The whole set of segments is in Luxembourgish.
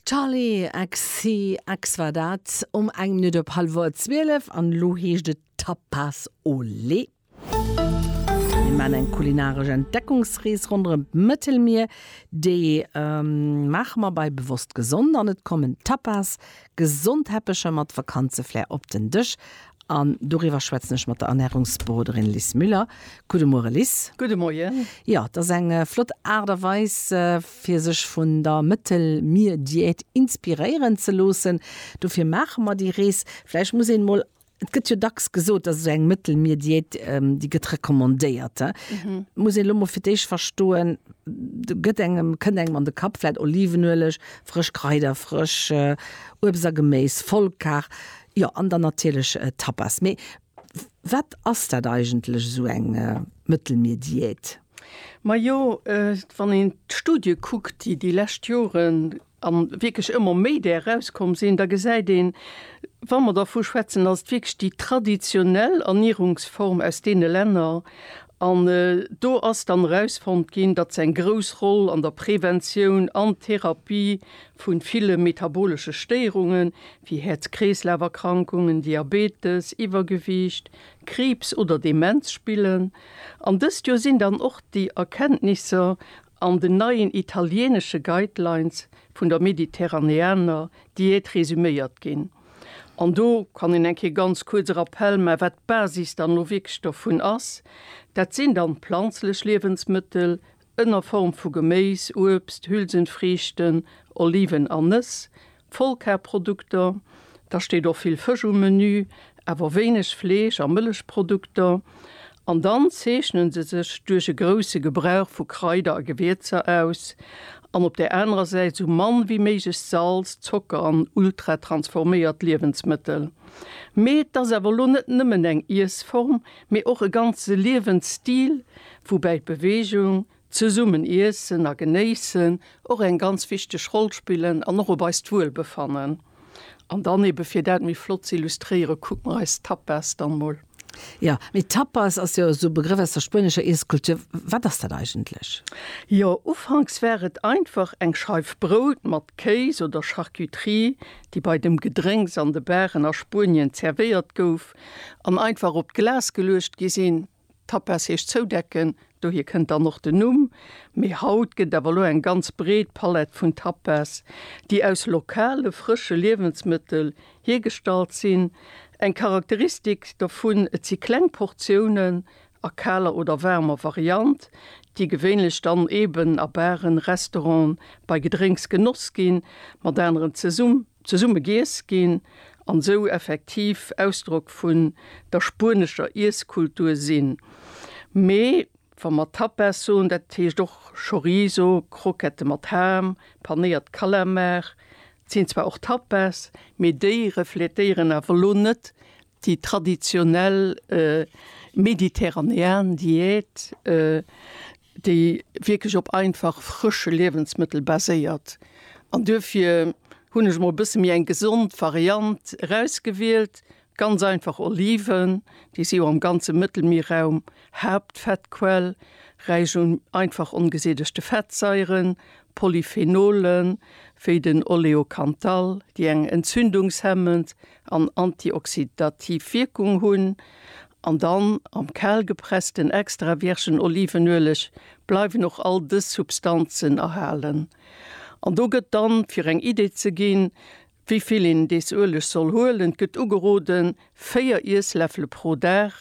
Charlie XCX war dat um eng Minutt op hallwer 12 an elo heescht et Tapas Olé. Mir maachen eng kulinaresch Entdeckungsrees ronderëm d'Mëttelmier. Déi maache mer bei Bewosst Gesond an et kommen Tapas, gesond Teppecher mat Vakanzeflair op den Dësch An doriwwer schwätzen ech mat der Ernärungsberoderin Lis Müller. Gudde Muere Lis. Gudde Moien. Jo, et ass eng flott Aart a Weis fir sech vun der Mëttelmierdiät inspiréieren ze loossen. Dofir maache mer déi Rees. Vläicht muss een mol, et gëtt jo dacks gesot, dass esou eng Mëttelmierdiät, déi gëtt recommandéiert, muss een elo mol fir d'éischt verstoen, gëtt engem, kënnt engem an de Kapp vläicht Olivenueleg, frësch Kraider, frësch Uebst a Geméis, Vollkar, Jo, an dann natierlech Tapas. Mee wat ass dat eigentlech, esou eng Mëttelmierdiät? Majo, wann een d'Studie kuckt, déi déi lescht Joren a wierklech ëmmer méi där erauskomm sinn, da gesäit een, wa mer dervu schwätzen, dass et wierklech déi traditionell Ernierungsform aus deene Länner, an do ass dann erausfonnt ginn, datt se eng grouss Roll an der Preventioun an Therapie vu ville metabolesche Stéierunge wéi Häerz-Kreeslaf-Erkrankungen, Diabetes, Iwwergewiicht, Kriibs oder Demenz spillen. An dëst Joer sinn dann och déi Erkenntnisser an den neien italieenesche Guidelines vun der mediterraneaner Diät resuméiert ginn. An do kann een eng Kéier ganz kuerz e Rappell maachen, wat d'Basis dann elo wierklech dovun ass. Dat sinn dann planzlech Liewensmëttel, ënner Form vu Geméis, Uebst, Hülsenfriichten, Oliven an Nëss, Vollkarprodukter, da steet och vill Fësch um Menü, awer wéineg Fleesch a Mëllechprodukter, an dann zeechnen se sech duerch e grousse Gebrauch vu Kraider a Gewierzer aus, an op där anerer Säit esou mann wéi méiglech Salz, Zocker an ultratransforméiert Liewensmëttel. Mee et ass awer elo net nëmmen eng Iessform, mee och e ganze Liewensstil, woubäi d'Beweegung, zesummen Iessen a Genéissen och eng ganz wichteg Roll spillen an och op eist Wuelbefannen. An dann ebe fir dat méi flott z'illustréiere kucke mer eis d'Tapas dann mol. Jo, mee Tapas ass jo esou e Begrëff aus der spuenescher Iesskultur. Wat ass dat eigentlech? Jo, ufanks war et einfach eng Scheif Brout mat Kéis oder Charcuterie, déi bei dem Gedrénks an de Baren a Spuenien zervéiert gouf, an einfach op d'Glas geluecht gi sinn. Tapas heescht zoudecken, dohier kënnt dann och den Numm. Mee haut gëtt awer elo eng ganz breet Palett vun Tapas, déi aus lokale frësche Liewensmëttel hiergestallt sinn. Eng Charakteristik dovun, et si kleng Portiounen a kaler oder waarmer Variant, déi gewéinlech dann eeben a Baren, Restauranten, bei Gedrénks genoss ginn, mat aneren zesumm. Zesumme giess ginn an esou effektiv Ausdrock vun der spuenescher Iesskultur sinn. Mee wa mer Tapas soen, dat heescht och Chorizo, Croquette mat Ham, panéiert Kalamar. Sinn zwar och Tapas, mee déi refletéieren awer lo net Déi traditionell mediterranean Diät, déi wierklech op einfach frësche Liewensmëttel baséiert. An duerfir hunn ech mol e bësse méi eng gesond Variant erausgewielt, ganz einfach Oliven, déi si jo am ganze Mëttelmierraum Haaptfettquell, räich un einfach ongesättegte Fettsaieren, Polyphenolen, wéi den Oleocanthal, déi eng entzündungshemmend, an antioxidativ Wierkung hunn an dann am kal gepressten extra virgen Olivenueleg bleiwen och all dës Substanzen erhalen. An do gëtt dann, fir eng Idee ze ginn, wéi vill een dees Ueleg soll huelen, gëtt ugeroden, 4 Iessläffele pro Dag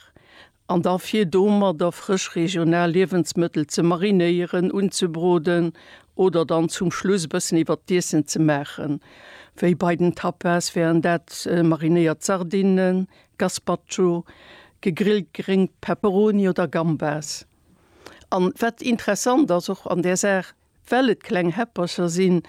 An da fir domadder frësch regional Liewensmëttel ze marinéieren, unzebroden oder dann zum Schluss e bëssen iwwert d'Iessen ze maachen. Wéi bei den Tapas wären dat marinéiert Sardinnen, Gazpacho, gegrillt Gréngt, Peperoni oder Gambas. An wat interessant ass och an där Saach, Well et kleng Häppercher sinn,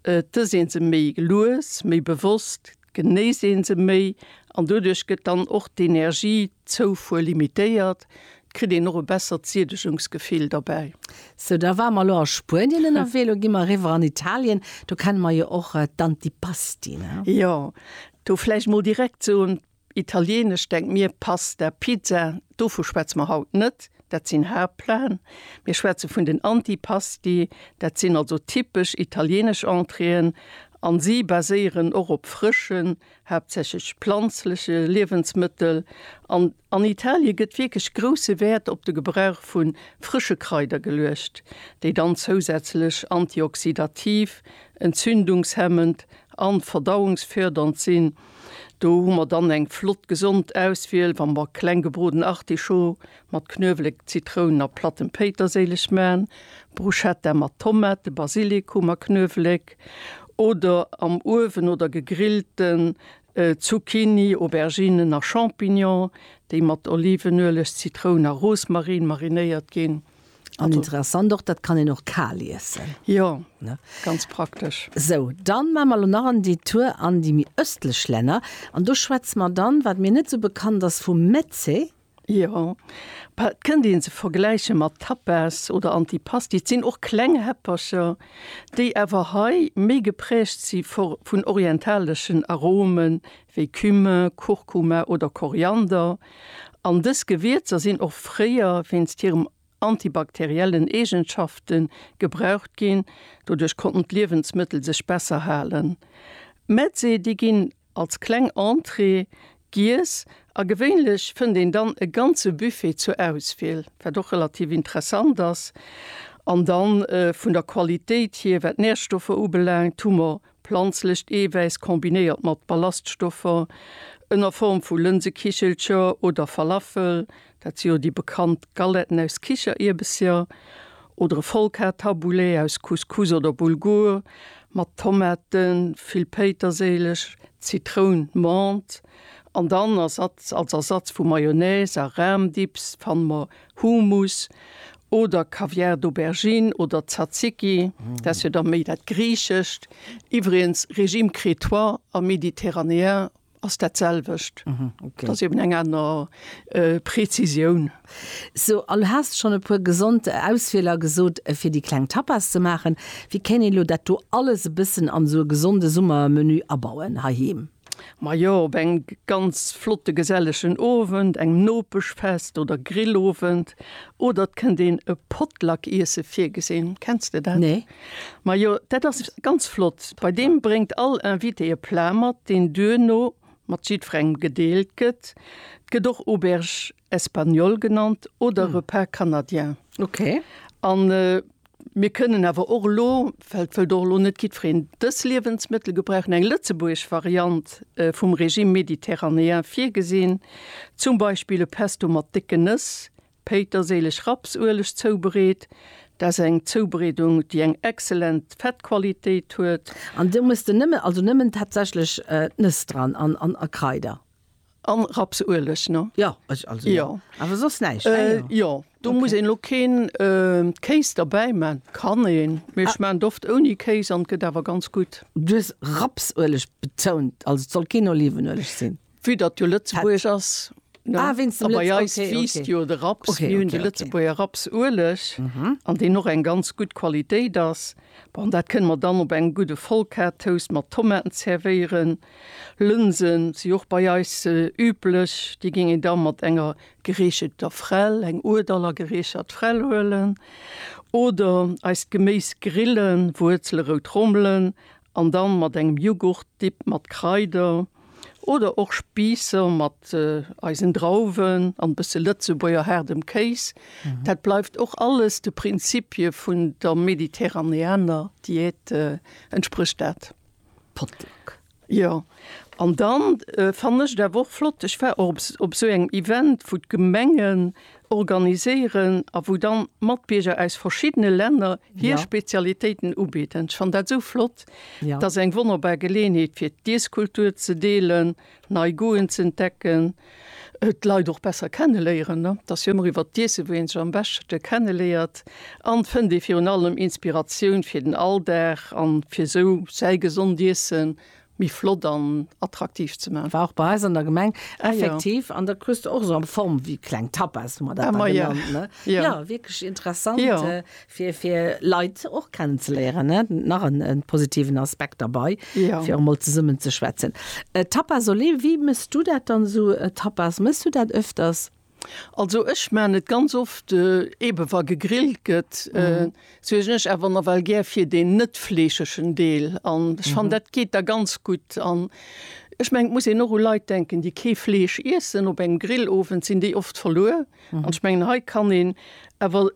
et ëss een se méi lues, méi bewosst, et genéisst een se méi an doduerch gëtt dann och d'Energiezoufuer limitéiert, et kritt een och e bessert Siedegungsgefill derbäi. Sou, da ware mer elo a Spuenien ënnerwee, elo gi mer eriwwer an Italien, do kenne mer jo och d'Antipasti, ne? Jo, do vläicht mol direkt soen, Italienesch, denk mir, Pasta, Pizza, dovu schwätze mer haut net, dat sinn Haaptplaten. Mir schwätze vun den Antipasti, dat sinn also typesch italienesch Entréeën a si baséieren och op frëschen, haaptsächlech planzleche Liewensmëttel. An an Italie gëtt wierklech grousse Wäert op de Gebrauch vu frësche Kraider geluecht, déi dann zousätzlech antioxydativ, entzündungshemmend a verdauungsfördernd sinn. Do hu mer dann eng flott gesond Auswiel, wa mer kleng gebroden Artichaut mat Knuewelek, Zitrounen a plattem Péiterséileg maan, Bruschetta mat Tomate, Basilikum a Knuewelek oder am Uewen oder gegrillten Zucchini, Auberginen a Champignons, déi mat Olivenueleg, Zitroun a Rosmarin marinéiert ginn. An interessant och, dat kann een och kal iessen. Jo, ganz praktesch. Sou, dann maan mer lo nach en Detour an déi méi östlech Länner, an do schwätzen mer dann, wat mir net sou bekannt ass, vum Meze. Jo, et kënnt een se vergläichen mat Tapas oder Antipasti. Et sinn och kleng Häppercher, déi awer hei méi geprägt si vun orientaleschen Aromen wéi Cumin, Kurkuma oder Koriander, an dës Gewierzer sinn och fréier wéinst hirem antibakteriellen Eegenschafte gebraucht ginn, doduerch konnten d'Liewensmëttel sech besser halen. D'Metze déi ginn als kleng Entrée giess a gewéinlech fënnt een dann e ganze Buffet zur Auswiel, wat och relativ interessant ass. An da vun der Qualitéit hier, wat d'Närstoffer ubelaangt, hu mer Planzlecht Eewäiss kombinéiert mat Ballaststoffer ënner Form vu Lënsekichelcher oder Falafel, dat si jo déi bekannt Galetten aus Kichererbesser, oder e Vollkartaboulet aus Couscous oder Bulgur, mat Tomaten, vill Péiterséileg, Zitroun, Menthe, an dann Ersatz, als Ersatz vu Mayonnaise a Ram-Dips fanne mer Hummus oder Caviar d'Aubergine oder Tzatziki, dat ass jo da méi dat Griichescht. Iwwregens, Régime crétois a méditerranéen ass dat selwecht. Dat ass eben eng aner Präzisioun. So, an du has schonn e puer gesond Auswieler gesot, fir déi kleng Tapas ze maachen. Wéi kéint een elo dat do alles e bëssen an esou e gesonde Summermenü abauen heiheem? Majo, op engem ganz flotte gesellegen Owend, engem Nopeschfest oder Grillowend. Oder et kënnt een e Potluck-Iesse virgesinn. Kenns de dat? Nee. Majo, dat ass ganz flott. Bei deem bréngt all Invité e Plat mat, deen duerno mat jiddwerengem gedeelt gëtt. Et gëtt och Auberge espagnole genannt oder Repas canadien. Okay. An Mir kënnen awer och elo, well et wëllt och elo net jiddwereen dës Liewensmëttel gebrauchen, eng lëtzebuergesch Variant vum Régime méditerranéen virgesinn, zum Beispill e Pesto mat décke Nëss, Péiterséileg, Raps, Ueleg zoubereet. Dat ass eng Zoubereedung, déi eng exzellent Fettqualitéit huet. An do muss de nëmme, also nëmmen tatsächlech d'Nëss dran an Kraider. An Rapsueleg, ne? Jo, ech also. Jo. Awer soss näischt, ne? Äh, jo. Do muss een elo keen Kéis derbäi man. Kann een, mee ech man et oft ouni Kéis an et gëtt awer ganz gutt. Du hues Rapsueleg betount, also et soll keen Olivenueleg sinn. Vue datt jo Lëtzebuergesch ass, ne? Ah, wéinst dem Lëtz. A bei eis wiisst jo de Raps. Okay, okay, okay. Mir hunn de Lëtzebuerger Rapsueleg, an deen och eng ganz gutt Qualitéit ass. Bon, dat kënne mer dann op engem gudde Vollkartoast mat Tomaten zervéieren. Lënsen si och bei eis üblech. Déi géing een da mat enger gereecheter Fräll, eng Hurdaller gereechert Fräll huelen. Oder eist Geméis grillen, Wuerzele, rout Rommelen an dann mat engem Jughurt-Dip mat Kraider. Oder och Spiisser mat eisen Drauwen an e bësse Lëtzebuerger haardem Kéis. Dat bleift och alles de Prinzipie vun der mediterraneaner Diät, entsprécht dat. Potluck. Jo, an dann fannen ech et awer och flott, ech war och op esou engem Event, wou d'Gemengen organiséieren a wou dann d'Matbierger aus verschiddene Länner hir Spezialitéiten ubidden. Ech fannen dat esou flott. Dat ass eng wonnerbar Geleeënheet, fir d'Iesskultur ze deelen, nei Goûten ze entdecken, d'Leit och besser kenneléieren, ne, et ass jo ëmmer iwwert d'Iessen, wou een sech am beschte kenneléiert, an fënnt ee virun allem Inspiratioun fir den Alldag an fir esou säi gesond Iessen méi flott an attraktiv ze man. War och bei eis an der Gemeng effektiv an da kruus de och esou am Form wéi kleng Tapas, hu mer dat da genannt, ne, jo wierklech interessant fir fir Leit och kennen ze léieren ne nach en positiven Aspekt derbei ja. fir emol zesummen ze schwätzen äh, Tapas Olé wie mëss du dat dann so äh, Tapas mëss du dat öfters? Also ech man net ganz oft äh, eben wa gegrillt gëtt äh, mhm. so ech awer na well gär fir den net fleescheschen Deel an mhm. fan dat geht da ganz gut an Ech meng muss en no Leiit denken, déi kee Fleesch Issen op eng Grillowend sinn déi oft verluer. An ech mengen, hei kann een awer,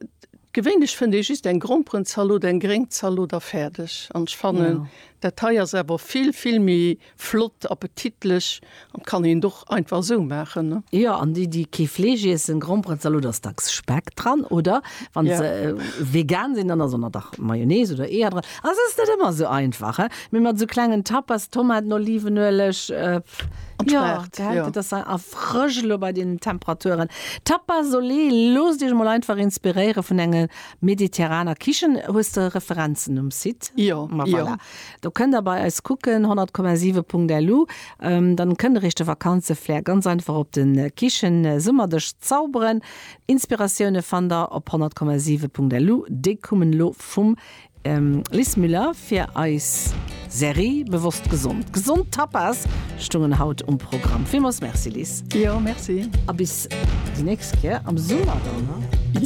gewéinlech fënnt ee just eng Gromperenzalot, eng gréng Zalot a fäerdeg. An ech fannen, dat hei ass awer vill, vill méi flott, appetitlech an kann een et och einfach esou maachen. Jo, an déi, déi kee Fleesch iessen, Gromperenzalot ass dacks Speck dran, oder? Wann se vegan sinn, dann ass ëmmer dach Mayonnaise oder Eeër dran. Ass ass net ëmmer esou einfach he, mee mat esou klengen Tapas, Tomaten, Olivenueleg, pff jo gell, dat ass a frësch elo bei deenen Temperaturen. Tapas olé, loosst iech mol einfach inspiréiere vun enger mediterraner Kichen. Hues de Referenzen um Site? Jo, ma voilà, do kënnt der bei eis kucken, 100,7.lu, dann kënnt der iech de Vakanzeflair ganz einfach op den Kichensummerdesch zauberen. Inspiratioune fannt der op 100,7.lu, déi kummen elo vum. Liz Müller fir eis Serie Bewosst Gesond. Gesond Tapas stoungen haut um Programm. Villmols Merci Liz. Jo, Merci. A bis déi nächst Kéier am Summer dann, ne?